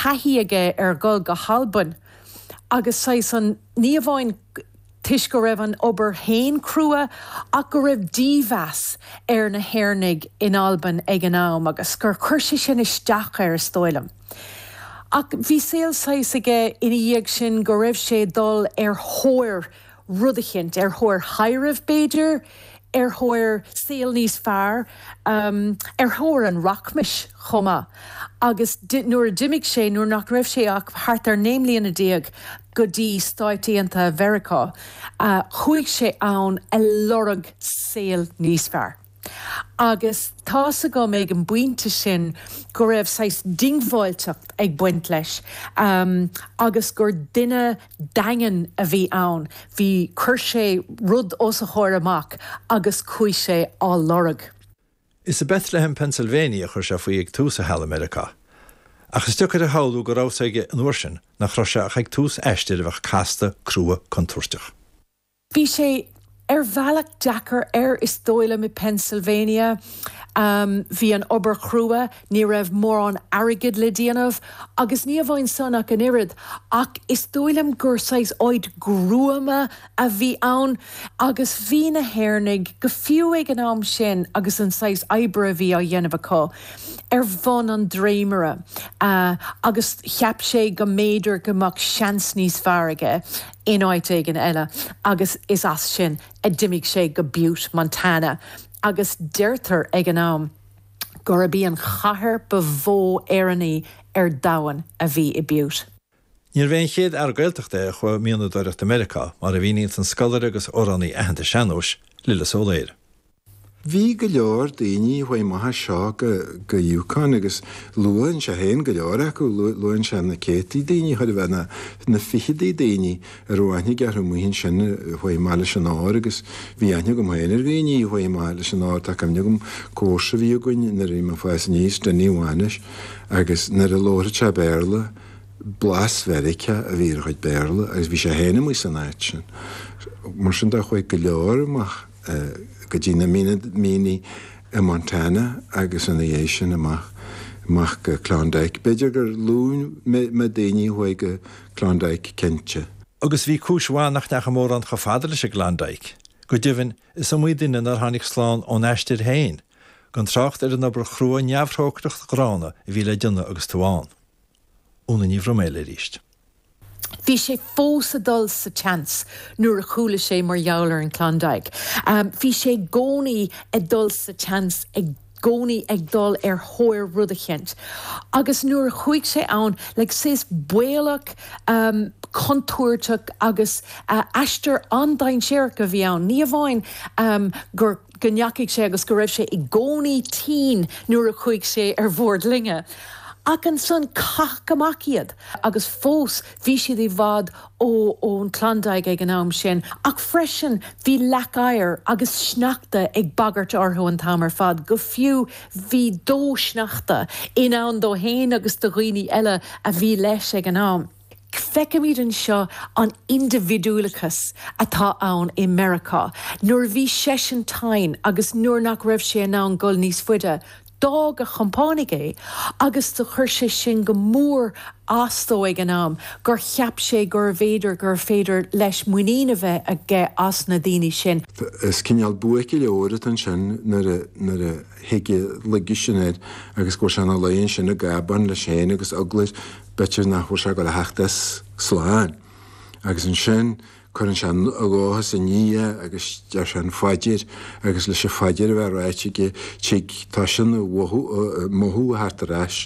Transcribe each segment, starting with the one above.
thaithí aige ar dhul go hAlbain agus saghas an, ní amháin toisc go raibh an obair féin crua ach go raibh dímheas ar na hÉireannaigh in Albain ag an am agus gur chuir sé sin isteach air is dóigh liom. Ach bhí saol saghas aige ina dhiaidh sin go raibh sé ag dul ar thóir rud éicint, ar thóir thaibhreamh b'fhéidir, ar thóir saol níos fearr, ar thóir an rachmais chomh maith. Agus nuair a d'imigh sé, nuair nach raibh sé ach thart ar naoi mbliana déag, go dtí Stáit Aontaithe Mheiriceá, chuaigh sé ann a lorg saol níos fearr. Agus tá's agam ag an bpointe sin go raibh saghas diongbháilteacht ag baint leis agus gur duine daingean a bhí ann. Bhí chuir sé rud os a chomhair amach agus chuaigh sé á lorg. Is i mBethlehem, Pennsylvania a chuir sé faoi ag tús a sheal i Meiriceá. Ach is deacair a shamhlú go raibh a fhios aige an uair sin, nach raibh sé ach ag tús aistir a bheadh casta, crua, contúirteach. Bhí sé ar bhealach deacair air is dóigh liom i bPennsylvania. Bhí an obair crua, ní raibh mórán airgid le déanamh agus ní amháin san ach an oiread ach is dóigh liom gur saghas áit gruama a bhí ann agus bhí na hÉireannaigh, go fiú ag an am sin agus an saghas oibre a bhí á dhéanamh acu, ar bhun an dréimire agus cheap sé go mb'fhéidir go mbeadh seans níos fearr aige. in áit éigin eile agus is as sin a d'imigh sé go Butte, Montana agus deirtear ag an am gurb í an chathair ba mhó Éireannaí ar domhan a bhí i Butte. Níorbh é an chéad fhear Gaeltachta é a chuaigh ag mianadóireacht i Meiriceá, mar a mhíníonn an scoláire agus amhránaí aitheanta sean-nóis, Lillis Ó Laoire. Bhí go leor daoine fán bhaile seo go Yukon agus luann sé féin go leor acu, luann sé na céadtaí daoine, chóir a bheith na fichidí daoine, a raibh aithne aige orthu amuigh ansin fá Mhachaire Rabhartaigh agus bhí aithne agam féin ar dhaoine fá Mhachaire Rabhartaigh. Tá cuimhne agam comharsa a bhí againn nuair a bhí mé ag fás aníos, Dinny Mhanuis, agus nuair a labhair sé Béarla, blas Mheiriceá a bhí ar a chuid Béarla agus bhí sé féin amuigh san áit sin. Mar sin de chuaigh go leor amach. go dtí na mianaigh i Montana agus ina dhiaidh sin amach, amach go Klondike. B'fhéidir gur lú na daoine a chuaigh go Klondike, cinnte. Agus bhí cúis mhaith nach ndeachaigh mórán chomh fada leis an Klondike. Go deimhin, is iomaí duine nár tháinig slán ón aistear féin, gan trácht ar an obair chrua neamhthrócaireach ghránna a bhí le déanamh agus tú ann. Úna Ní Bhroiméil arís. Bhí sé fós a dul sa tseans nuair a chuala sé mar gheall ar an Klondike. Bhí sé i gcónaí a dul sa tseans, i gcónaí ag dul ar thóir rud eicínt. Agus nuair a chuaigh sé ann, like, saghas baolach, contúirteach agus aistear an-dainséarach a bhí ann. Ní hamháin gur. go ndeachaigh sé agus go raibh sé i gcónaí tinn nuair a chuaigh sé ar bhord loinge. Ach ansan caitheadh amach iad agus fós bhí siad i bhfad ó ón Klondike ag an am sin ach freisin bhí leac oighir agus sneachta ag bagairt orthu an t-am ar fad go fiú bhí dó sneachta i ndán dó fhéin agus do dhaoine eile a bhí leis ag an am. Feicimid anseo an indibhidiúlachas atá ann i Meiriceá. Nuair a bhí seisean tinn agus nuair nach raibh sé in ann dul níos faide, d'fhág a chompánaigh é agus do chuir sé sin go mór as dó ag an am gur cheap sé gurbh fhéidir gurbh féidir leis muinín a bheith aige as na daoine sin. Is cineál buaic an leabhair atá ansin nuair a thig an laige sin air agus go bhfuil sé ina luí ansin i gcábán leis féin agus eagla air. B'fhéidir nach bhfuil sé ag gabháil a theacht as slán. Agus ansin cuireann sé a dhóchas i nDia agus deir sé an phaidir agus leis an phaidir a bheith ráite aige tig toisíonn an mothú a theacht ar ais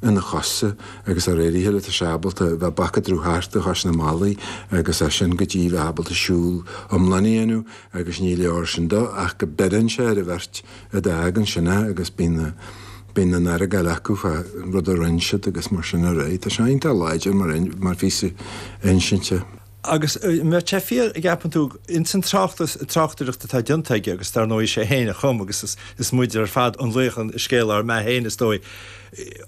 ina chosa agus de réir a chéile tá sé ábalta bheith ag bacadradh thart a chois na mballaí agus as sin go dtí bheith ábalta siúl iomlán a dhéanamh agus ní leor sin dó ach go mbeireann sé ar an bheirt Úd a d'fhág ansin é agus bíonn, bíonn an-argáil acu fán rud a rinn siad agus mar sin ar aghaidh. Tá sé iontach láidir mar, mar phíosa insinte. Agus má tá fíor an gceapann tú, ins an tráchtas, tráchtaireacht atá déanta aige agus dar ndóigh is é féin a chum agus is, is muide ar fad an laoch i scéal ár mbeatha féin is dóigh.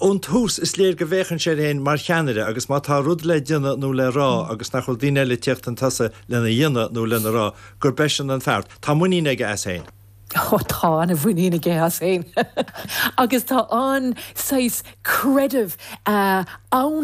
Ón tús is léir go bhféachann sé air féin mar cheannaire agus má tá rud le déanamh nó le rá agus nach bhfuil daoine eile ag tíocht chun tosaigh lena dhéanamh nó lena rá, gurb eisean an fear. Tá muinín aige as féin. Oh, tá an-mhuinín aige as féin agus tá an-saghas creideamh ann.